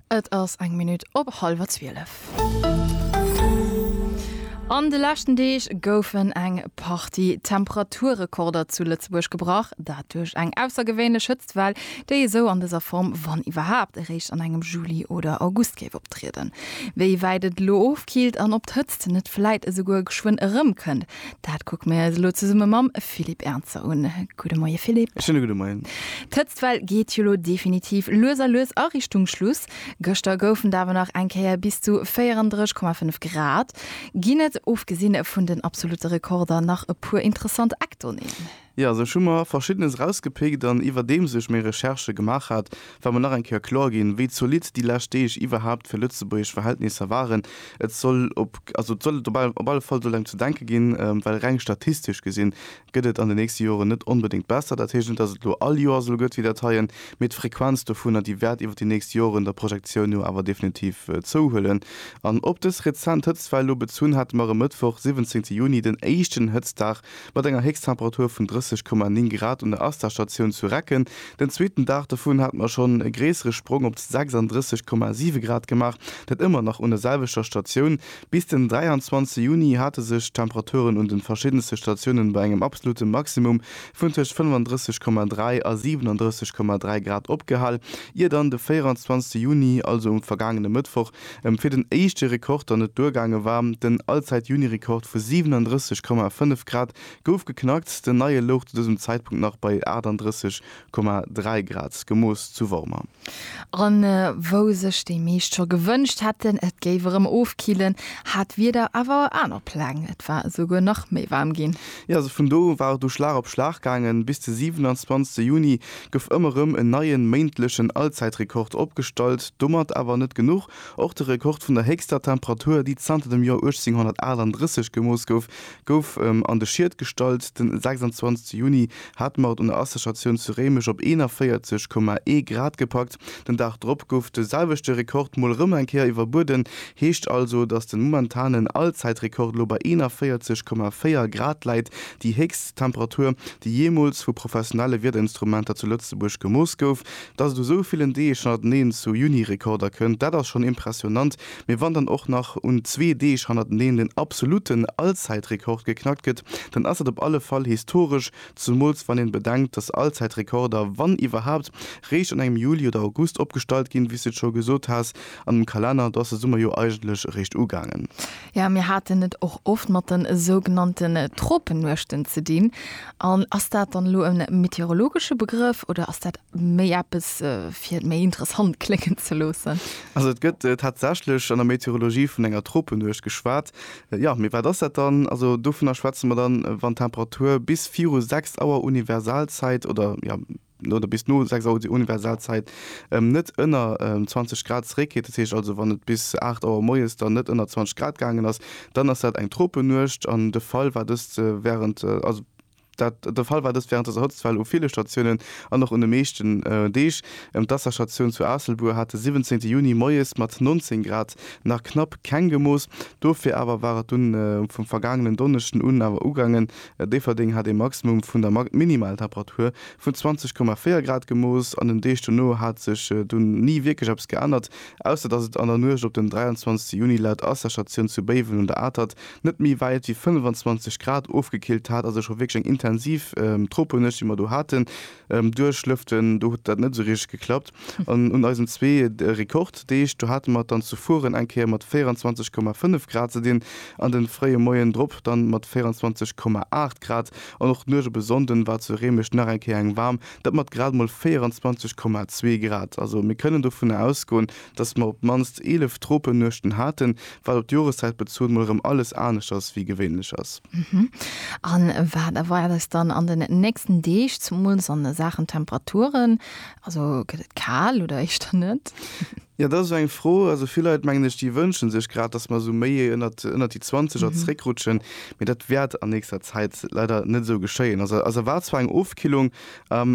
Et ass eng Minutt op hallwer zwielef. An de leschten Deeg goufen eng Partie Temperaturrekorder zu Lëtzebuerg gebrach. Dat duerch eng aussergewéinlech Hëtztwell, déi esou an dëser Form, wann iwwerhaapt, eréischt an engem Juli oder August géif optrieden. Wéi wäit et elo ofkillt an ob d'Hëtzt net vläit esouguer geschwënn erëmkënnt, Dat kuck mir eis elo zesumme mam Philippe Ernzer un. Gudde Moie Philippe. Schöne gudde Moien. D'Hëtztwell geet jo lo definitiv lues a lues a Richtung Schluss. Gëschter goufen et awer nach eng Kéier bis zu 34,5 Grad. Ginn et, ofgesinn vun den absolute Rekorder, nach e puer interessant Eckdonnéeën? Jo, sech hu mer verschiddenes erausgepickt an iwwerdeems ech méi Recherchë gemaach hat, war mer nach eng Kéier kloer ginn, wéi zolidd déi lescht Deeg iwwerhaapt fir lëtzebuergesch Verhältnisser waren. Et soll op, also et soll et op, op alle Fall soll et engem ze denke ginn, well reng statistesch gesinn gëtt et an den nächste Joren net onbedéngt besser. Dat heescht net, dass et elo all Joer esou gëtt wéi dat heien, mee d'Frequenz dovunner, déi wäert iwwer déi nächst Joren der Projektioun no awer definitiv zouhuelen. An op dës rezent Hëtztwell elo bezunn hate mer e Mëttwoch, siwwenzéngte Juni, den éischten Hëtztdag Mat enger Héchsttemperatur vun 30,9 Grad un der Asta-Statioun zu Recken, den zweeten Dag dovun, hate mer schonn e gréissere Sprong op 36,7 Grad gemaach, dat ëmmer nach un der selwechter Statioun. Bis den 23 Juni hate sech d'Temperaturen un de verschiddenste Statiounen bei engem absolute Maximum vun tëscht 35,3 a 37,3 Grad opgehal, ier dann de 24 Juni, also um vergaangene Mëttwoch, Em fir den éischte Rekord der net duergaange war. Den Allzäit-Juni-Rekord vu 37,5 Grad gouf geknackt. Den neie louch zu dësem Zäitpunkt nach bei 38,3 Grad, gemooss zu Wormer. An wou sech déi meescht scho gewënscht hätten, et géif erëm ofkillen, hat d'Wieder awer aner Pläng. Et war esouguer nach méi waarm ginn. Jo, also vun do war et du Schlag op Schlag gaangen. Bis de 27 Juni gouf ëmmer erëm en neien méintlechen Allzäitrekord opgestallt. Domat awer net genuch, och de Rekord vun der héchster Temperatur, déi zanter dem Joer 1838 gemooss gouf, gouf an de Schiet gestallt. Den 26 Juni hat d'Maud un der Asserchatioun zu Réimech op 41,1 Grad gepackt. Den Dag drop gouf de selwechte Rekord mol rëm eng Kéier iwwerbueden. Heescht also, dass den momentanen Allzäitrekord elo bei 41,4 Grad läit, déi héchst Temperatur, déi jeemools vu professionelle Wiederinstrumenter zu Lëtzebuerg gemooss gouf. Dass et u sou villen Deeg hannerteneen zu Juni-Rekorder kënnt, dat ass schonn impressionnant. Mee wann dann och nach un zwee Deeg hannerteneen den absoluten Allzäitrekord geknackt gëtt, dann ass dat op alle Fall historesch, Zumools wann een bedenkt, dass Allzäitrekorder, wann iwwerhaapt, réischt an engem Juli oder August opgestallt ginn, wéi's de et scho gesot has an dem Kalenner, do ass de Summer jo eigentlech eréischt ugaangen. Jo, mir haten et och oft mat den sougenannten Tropennuechten ze dinn. An ass dat dann elo e meteorologesche Begrëff oder ass dat méi eppes fir et méi interessant kléngen ze loossen? Also et gëtt tatsächlech an der Meteorologie vun enger Tropennuecht geschwat, Jo, mee wat ass dat dann? Also dovunner schwätze mer dann, wann d'Temperatur bis viru 6 Auer Universalzäit oder, jo, oder bis no 6 Auer Universalzäit net ënner 20 Grad zeréckgeet, dat heescht also wann et bis 8 Auer moies dann net ënner 20 Grad gaangen ass, dann ass dat eng Tropennuecht. An de Fall war dëst wärend, also. Dat de Fall war dëst wärend der Hëtztwell u ville Statiounen an och un de meeschten Deeg. D'Asserstatioun zu Aasselbuer hat de 17 Juni moies mat 19 Grad nach knapp keng gemooss. Dofir awer war et dunn vum vergaangenen Donneschden un awer ugaangen. Déifferdeng hat ee Maximum vun der Minimaltemperatur vun 20,4 Grad gemooss. An den Deeg dono hat sech dunn ni wierklech eppes geännert, ausser datt et an der Nuecht op den 23 Juni laut Asserstatioun zu Béiwen un der Atert net méi wäit wéi 25 Grad ofgekillt hat, also scho wierklech eng intensiv Tropenuecht, déi mer do haten. Duerch lëften, do huet dat net esou richteg geklappt. An un eisen zwee Rekorddeeg, do hate mer et dann zu Furen eng Kéier mat 24,5 Grad ze dinn, an de fréie Moien drop dann mat 24,8 Grad. An och d'Nuecht op e Sonnden war zu Réimech nach eng Kéier eng waarm, dat mat grad emol 24,2 Grad. Also mir kënnen dovunner ausgoen, Dass mer op d'mannst 11 Tropennuechten haten, wat op d'Joreszäit bezunn mol erëm alles anescht ass wéi gewéinlech ass. A wat erwaart eis dann an den nächsten Deeg, zemools a Saachen Temperaturen? Also gëtt et kal oder éischter net? Jo, dat ass esou eng Fro. Also vill Leit, mengen ech, déi wënsche sech grad, dass mer esou méi ënnert déi 20 Grad zréckrutschen, mee dat wäert an nächster Zäit leider net esou geschéien. Also eis erwaart zwar eng Ofkillung,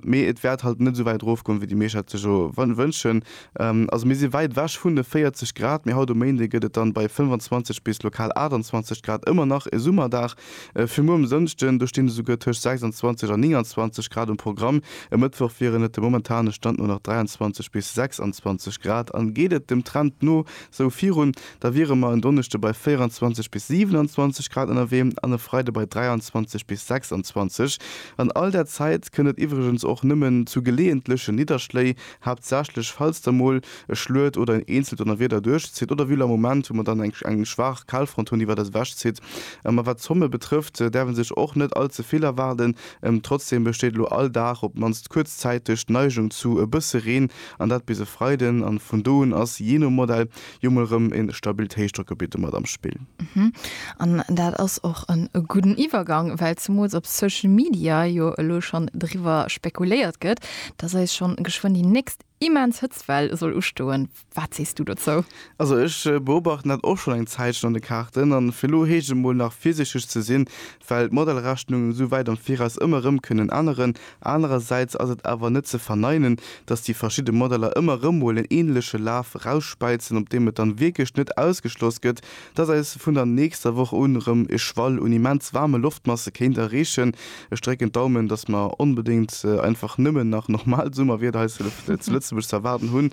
mee et wäert halt net esou wäit erofgoen, wéi déi meescht dat sech elo wënschen. Also mir si wäit ewech vun de 40 Grad, mee haut um Méinde gëtt et dann bei 25 bis lokal 28 Grad ëmmer nach e Summerdag. Fir muer um Sënschden, do stinn esouguer tëscht 26 an 29 Grad um Programm. E Mëttwoch wieren et dem momentane Stand no nach 23 bis 26 Grad an geet et dem Trend no esou virun, da wiere mer en Donneschde bei 24 bis 27 Grad ënnerwee an e Freide bei 23 bis 26. An all där Zäit kënnt et iwwregens och nëmmen zu geleeëntlechen Nidderschléi haaptsächlech falls da mol e Schluet oder en eenzelt Donnerwieder duerchzitt, oder wéi lo am Moment, wou mer dann eng eng schwaach Kalfront hunn, déi iwwert eis ewechzitt. A wat d'Zomme betrëfft, däerf ee sech och net all ze vill erwaarden. Trotzdeem besteet elo all Dag, op d'mannst kuerzzäiteg, d'Neigung zu e bësse Reen, an dat bis e Freiden. A vun do un ass, jee no Modell, Jo mol rem en stabilt Héichdrockgebitt domat am Spill. An dat ass och en gudden Iwwergang, well zemools op Social Media jo elo schonn driwwer spekuléiert gëtt, dass eis schonn geschwënn déi nächst immens Hëtztwell soll ustoen. Wat sees du dozou? Also ech beobachten dat och schonn eng Zäitchen an de Kaarten an fir elo heescht et mol nach virsiichteg ze sinn, well d'Modellrechnungen esou wäit am Viraus ëmmer rem kënnen änneren. Anerersäits ass et awer net ze verneinen, datt déi verschidde Modeller ëmmer erëm mol en änleche Laf erausspeizen, op deem et dann wierklech net ausgeschloss gëtt, datt eis vun der nächster Woch un erëm e Schwall un immens waarme Loftmasse kéint erreechen. Ech drécken d'Daumen, datt mer onbedéngt einfach nëmmen nach normal Summerwieder hei zu Lëtzebuerg ze erwaarden hunn,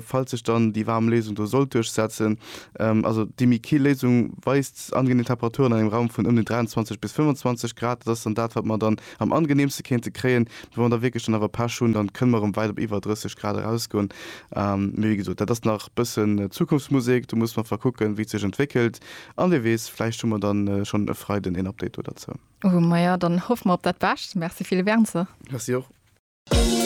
falls sech dann déi waarm Léisung do sollt duerchsetzen. Also déi méi kill Léisung weist angenee Temperaturen an engem Raum vun ëm déi 23 bis 25 Grad. Dat ass dann dat, wat mer dann am angeneemste kéinte kréien. Mee wa mer da wierklech dann awer Pech hunn, dann kënne mer erëm wäit op iwwer 30 Grad erausgoen. Mee wéi gesot, dat ass nach bëssen Zukunftsmusek. Do musse mer einfach kucken, wéi et sech entwéckelt. An wie weess, vläicht hu mer dann schonn e Freiden een Update do derzou. Maja, dann hoffe mer op dat Bescht. Merci Philippe Ernzer. Merci och.